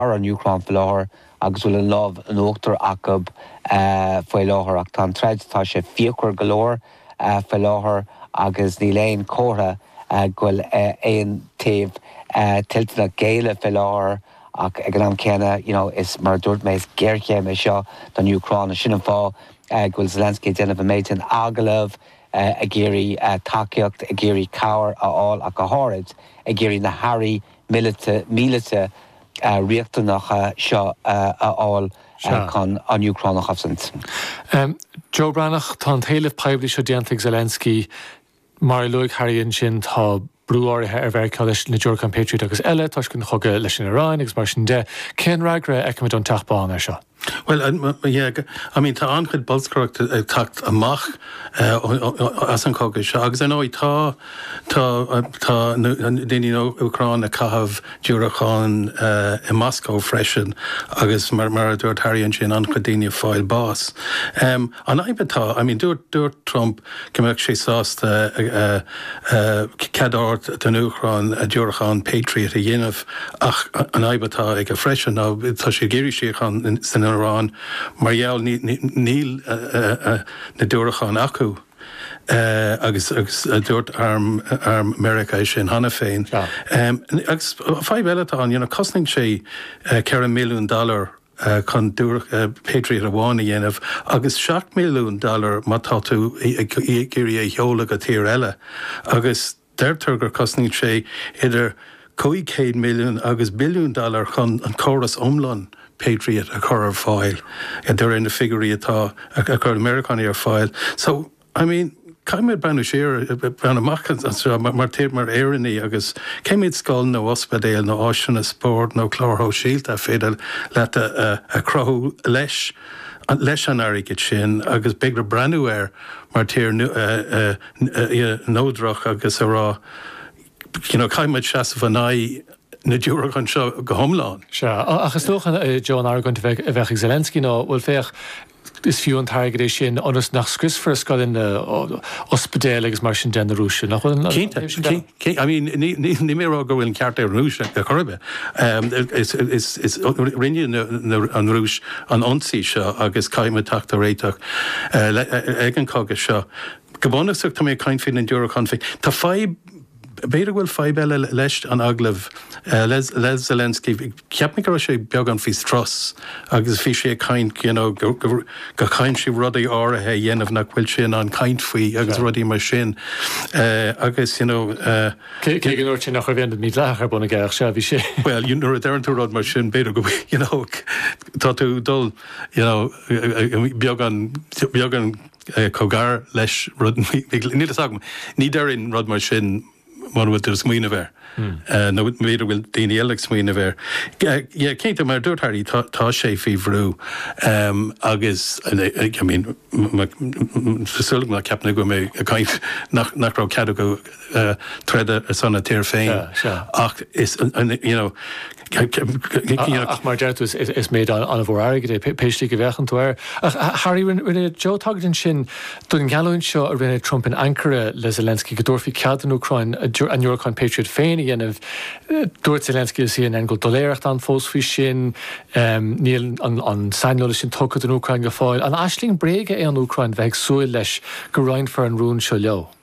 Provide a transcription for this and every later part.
ar an Úcráin faoi láthair agus bhfuil an lámh in uachtar acu faoi láthair. Ach tá an troid, tá sé fíochmhar go leor faoi láthair agus níl aon chomhartha go bhfuil aon taobh toilteanach géilleadh faoi láthair. Ach ag an am céanna, you know, is, mar a dúirt mé, is géarchéim é seo don Úcráin. Sin an fáth go bhfuil Zelensky ag déanamh an méid sin agallamh, ag iarraidh tacaíocht, ag iarraidh cabhair a fháil ach go háirithe ag iarraidh na hairí míleata riachtanacha seo a fháil chun an Úcráin a chosaint. Joe Breathnach, tá an t-éileamh poiblí seo déanta ag Zelensky. Mar a luaigh Harry ansin, tá brú áirithe ar Mheiriceá leis na diúracáin Patriot agus eile toisc an chogaidh leis an Iaráin agus mar sin de. Cén fhreagra a fheicfimid ón Teach Bán air seo? Bhuel, I mean tá an-chuid bolscaireachta ag teacht amach as an chogadh seo agus ar ndóigh tá, tá daoine ón Úcráin ag caitheamh diúracáin i Moscó freisin agus mar a dúirt Harry ansin an-chuid daoine ag fáil bás. An fhadhb atá, I mean dúirt Trump go mbeadh sé sásta cead a thabhairt don Úcráin diúracáin Patriot a dhéanamh ach an fhadhb atá aige freisin ná tá sé ag iarraidh síocháin san Iaráin mar gheall níl na diúracáin acu agus dúirt arm Meiriceá é sin cheana féin. Agus fadhb eile atá ann, you know cosnaíonn sé ceithre mhilliún dollar chun diúracán Patriot amháin a dhéanamh agus seacht milliún dollar má tá tú ag iarraidh é a sheoladh go tír eile agus deirtear gur chosnaíonn sé idir 500 milliún agus billiún dollar chun an córas iomlán Patriot a chur ar fáil, de réir na figiúirí atá á chur ag na Meiriceánaigh ar fáil. I mean, caithfidh muid breathnú siar, breathnú amach anseo mar tír, mar Éireannaigh agus cé mhéad scoil nó ospidéal nó áiseanna spóirt nó cláir shóisialta ar féidir leat a chruthú leis, leis an airgead sin agus b'fhéidir breathnú air mar tír neodrach agus a rá, you know, caithfidh muid seasamh in aghaidh na diúracán seo go hiomlán. Sea, ach is dócha, Joe, an argóint a bheadh ag Zelensky ná, bhuel, féach, Is fiú an t-airgead é sin ionas nach scriosfar scoileanna, ospidéil agus mar sin de ag na Rúisigh, nach bhfuil? Cinnte, cinnte. I mean, níl mé ag rá go bhfuil an ceart ag an Rúis ar chor ar bith. Is rinne an Rúis an ionsaí seo agus caithfidh muid teacht ar réiteach ag an chogadh seo. Go bunúsach, tá mé ag caint faoi na diúracáin féin. Tá fadhb B'fhéidir go bhfuil fadhb eile leis an agallamh le Zelensky. Cheap mé go raibh sé beagán faoi strus agus bhí sé ag caint, you know, go gcaithfidh siad rudaí áirithe a dhéanamh nach bhfuil sé in ann caint faoi agus rudaí mar sin agus, you know. Cé go ndúirt sé nach raibh aon rud mídhleathach ar bun aige ach sea, bhí sé. Bhuel, you know, nuair a deireann tú rud mar sin, b'fhéidir go bhfuil, you know, tá tú ag dul, you know, beagán, beagán, cóngarach leis rud níl fhios agam. Ní déarfainn rud mar sin muna bhfuil tú ag smaoineamh air nó b'fhéidir go bhfuil daoine eile ag smaoineamh air. Yeah, cinnte, mar a dúirt Harry, tá sé faoi bhrú agus I mean, tá súil agam ná ceapann tú go bhfuil mé ag caint nach raibh cead acu, troda ar son a thír féin ach you know Ach mar deir tú is méid an-mhór airgid é, pé slí go bhféachann tú air. Ach Harry, rinne Joe tagairt ansin don gheallúint seo a rinne Trump in Ankara le Zelensky go dtabharfaí cead don Úcráin a ndiúracáin Patriot féin a dhéanamh. Dúirt Zelensky le CNN go raibh doiléireacht ann fós faoi sin, níl an saineolas sin tugtha don Úcráin go fóill. An aisling bhréige é an Úcráin bheith ag súil leis go roinnfear an rún seo leo?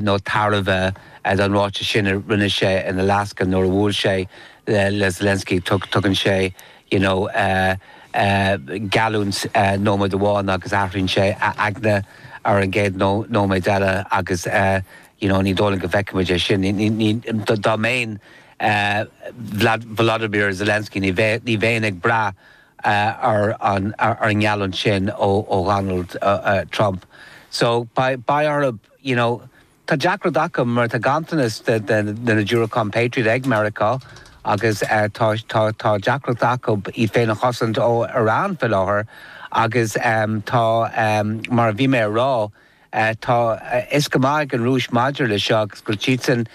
nó tairbhe don ráiteas sin a rinne sé in Alaska nuair a bhuail sé le Zelensky. Tugann sé you know geallúint nóiméad amháin agus athraíonn sé a aigne ar an gcéad nóiméad eile agus you know ní dóigh liom go bhfeicfimid é sin. Dá mbeinn Volodymyr Zelensky ní bheinn ag brath ar an ngeallúint sin ó Dhonald Trump. So beidh orthu, you know, tá deacracht acu mar tá ganntanas de na diúracáin Patriot ag Meiriceá agus tá tá deacracht acu iad féin a chosaint ó Iran faoi láthair agus tá, mar a bhí mé a rá, tá fhios go maith ag an Rúis maidir leis seo agus go bhfuil siadsan,